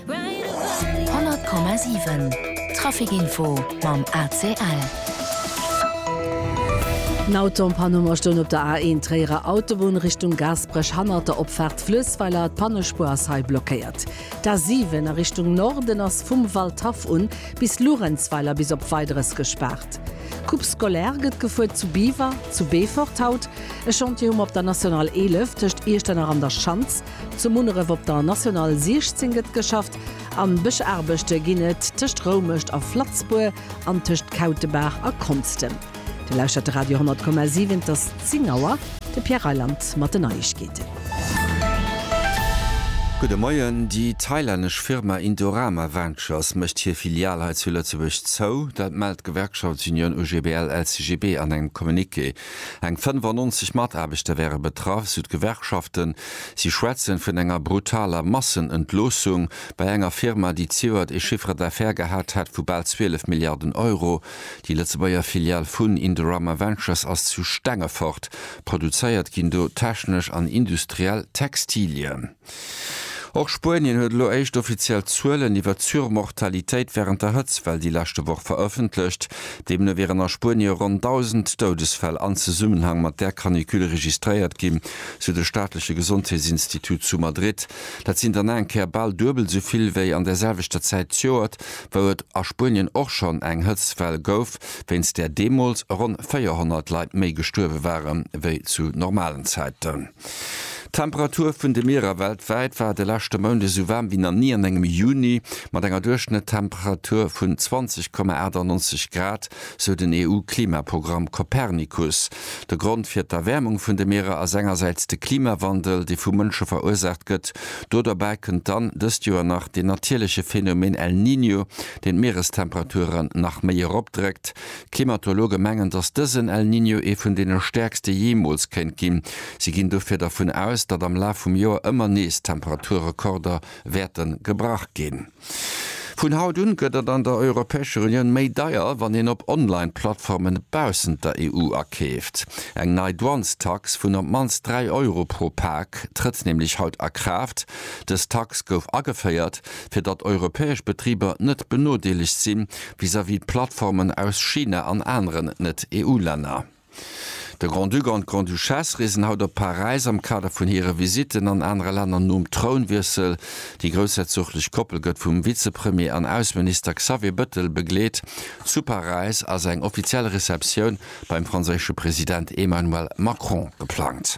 100,7 Trafic-Info mam ACL. En Auto am Panneau a stoung op der A1 Tréierer Autobunn Richtung Gaasperech hannert der Opfaart Fluessweiler. D'Pannespuer ass hei blockéiert. D'A7 a Richtung Norden ass vum Waldhaff un bis Luerenzweiler bis op Weideres gespaart. D'Coupe scolaire gëtt gefuer zu Biwer, zu Beefort haut e Chantier hu mer op der National 11 tëscht Iechternach an der Schanz. Zu Munneref op der National 16 gëtt geschafft. An Bëschaarbechte ginn et tëscht Roumescht a Flatzbour an tëscht Kautebaach a Konstem. Dir lauschtert de Radio 10,7, et ass 10 Auer. De Pierre Reyland mat den Neiegkeeten. Gudde Moien, Déi thailännesch Firma Indorama Ventures mécht hir Filial hei zu Lëtzebuerg zou. Dat mellt d'Gewerkschaftsunioun OGBL-LCGB an engem Communiqué. Eng 95 Mataarbechter wäre betraff, sou d'Gewerkschaften. Si schwätzen vun enger brutaler Massenentloossung bei enger Firma, déi zejoert ee Chiffre d'affaires gehat hätt vu bal 12 Milliarden Euro. Déi Lëtzebuerger Filial vun Indorama Ventures ass zu Stengefort. Produzéiert ginn do technesch an industriell Textilien. Och Spuenien huet elo éischt offiziell Zuelen iwwer d'Surmortalitéit wärend der Hëtztwell déi leschte Woch verëffentlecht. Deemno wieren a Spuenie ronn 1.000 Doudesfäll an Zesummenhang mat där Canicule registréiert ginn, sou de staatleche Gesondheetsinstitut zu Madrid. Dat sinn dann eng Kéier bal duebel esou vill wéi an der selwechter Zäit d'Joert, wou et a Spuenien och schonn eng Hëtztwell gouf, wéinst där deemools ronn 400 Leit méi gestuerwe ware wéi zu normalen Zäiten. D'Temperatur vun de Mierer weltwäit war de leschte Mount esou waarm wéi nach ni an engem Juni, mat enger Duerchschnëttemperatur vun 20,98 Grad, sou den EU-Klimaprogramm Copernicus. De Grond fir d'Erwäermung vun de Mierer ass engersäits de Klimawandel, dee vu Mënsche verursaacht gëtt. Do derbäi kënnt dann dëst Joer nach deen natierleche Phenomen El Niño, deen d'Mierestemperaturen nach méi eropdréckt. D'Klimatologe mengen, datt dësen El Niño ee vun deene stäerkste jeemools kéint ginn. Si ginn dofir dervun aus, datt am Laf vum Joer ëmmer nees Temperaturrekorder wäerte gebrach ginn. Vun haut un gëtt et an der Europäescher Unioun méi deier, wann een op Online-Plattformen baussent der EU akeeft. Eng nei Douanestax vun op d'mannst 3 Euro pro Pak trëtt nämlech haut a Kraaft. Dës Tax gouf ageféiert, fir datt europäesch Betriber net benodeelegt si vis-à-vis d'Plattformen aus China an aneren Net-EU-Länner. De Grand-Duc an d'Grande-Duchesse reesen haut op Paräis am Kader vun hire Visitten an anere Länner. Nom Trounwiessel, déi groussherzoglech Koppel gëtt vum Vizepremier an Ausseminister Xavier Bettel begleet zu Paräis, ass eng offiziell Receptioun beim franséische President Emmanuel Macron geplangt.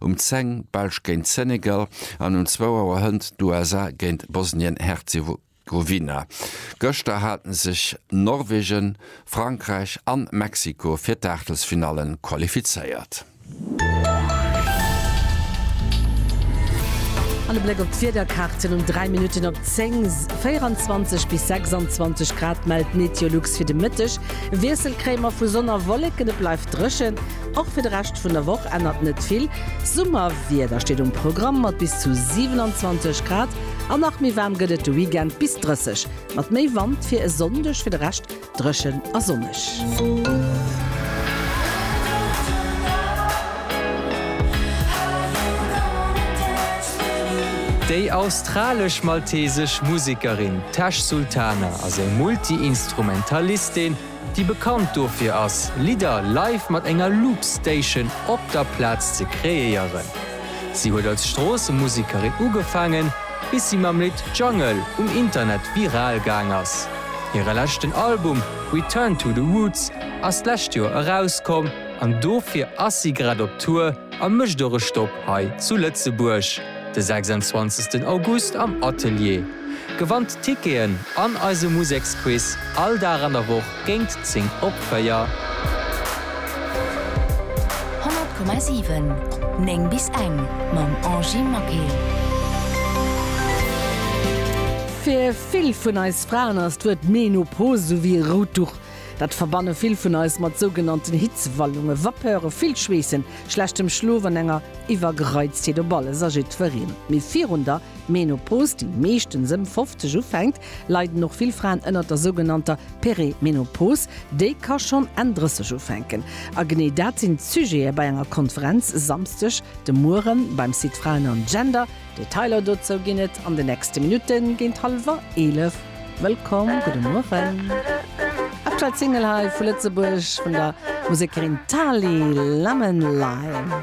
Um 10 d'Belsch géint Senegal an um 2 Auer hënt d'USA géint Bosnien-Herzegowina. Gëschter hate sech Norwegen, Frankräich an Mexiko fir d'Aachtelsfinalle qualifizéiert. An e Bléck op d'Wiederkaarten um 3 Minutten op 10, 24 bis 26 Grad mellt Meteolux fir de Mëtteg. Wiessel kréie mer vu Sonn a Wolleken, et bleift dréchen. Och fir de Rescht vun der Woch ännert net vill. Summerwieder steet um Programm mat bis zu 27 Grad an nach méi waarm gëtt et de Weekend, bis 30 mat méi Wand fir e Sonndeg. Fir de Rescht dréchen a sonneg. Déi australesch-maltesesch Musekerin Tash Sultana ass eng Multi-Instrumentalistin, déi bekannt dofir ass, Lidder live mat enger Loopstation op der Plaz ze kreéieren. Si huet als Stroossemusekerin ugefaangen, bis si mam Lidd Jungle um Internet viral gaang ass. Hire leschten Album Return to the Roots ass d'lescht Joer erauskomm an dofir ass si grad op Tour a mécht och e Stopp hei zu Lëtzebuerg de 26 August am Atelier. Gewannt Ticketen an eise Museksquiz all Dag an der Woch géint 10 op 4. Honnert Komma siwen, néng bis eng mam Angie Maquet. Fir vill vun eis Fraen ass d'Wuert Menopause sou wéi e rout Duch. Dat verbanne vill vun eis mat sougenannten Hitzewallunge, Vapeuren, vill Schweessen, schlechtem Schlof an enger Iwwergereiztheet op alles a jiddwereen. Mee virun der D'Menopause, déi meeschtens ëm 50 ufänkt, leiden och vill Fraen ënnert der sougenannter Perimenopause, déi ka schonn Enn 30 ufänken. A genee dat sinn d'Sujete bei enger Konferenz e Samsdeg de Mueren beim Site Frauen an Gender. Detailer dozou ginn et an de nächste Minutten géint hallwer 11. Wëllkomm, gudde Mueren. Aktuell Single hei vu Lëtzebuerg vun der Musekerin Tali Lemon Lime.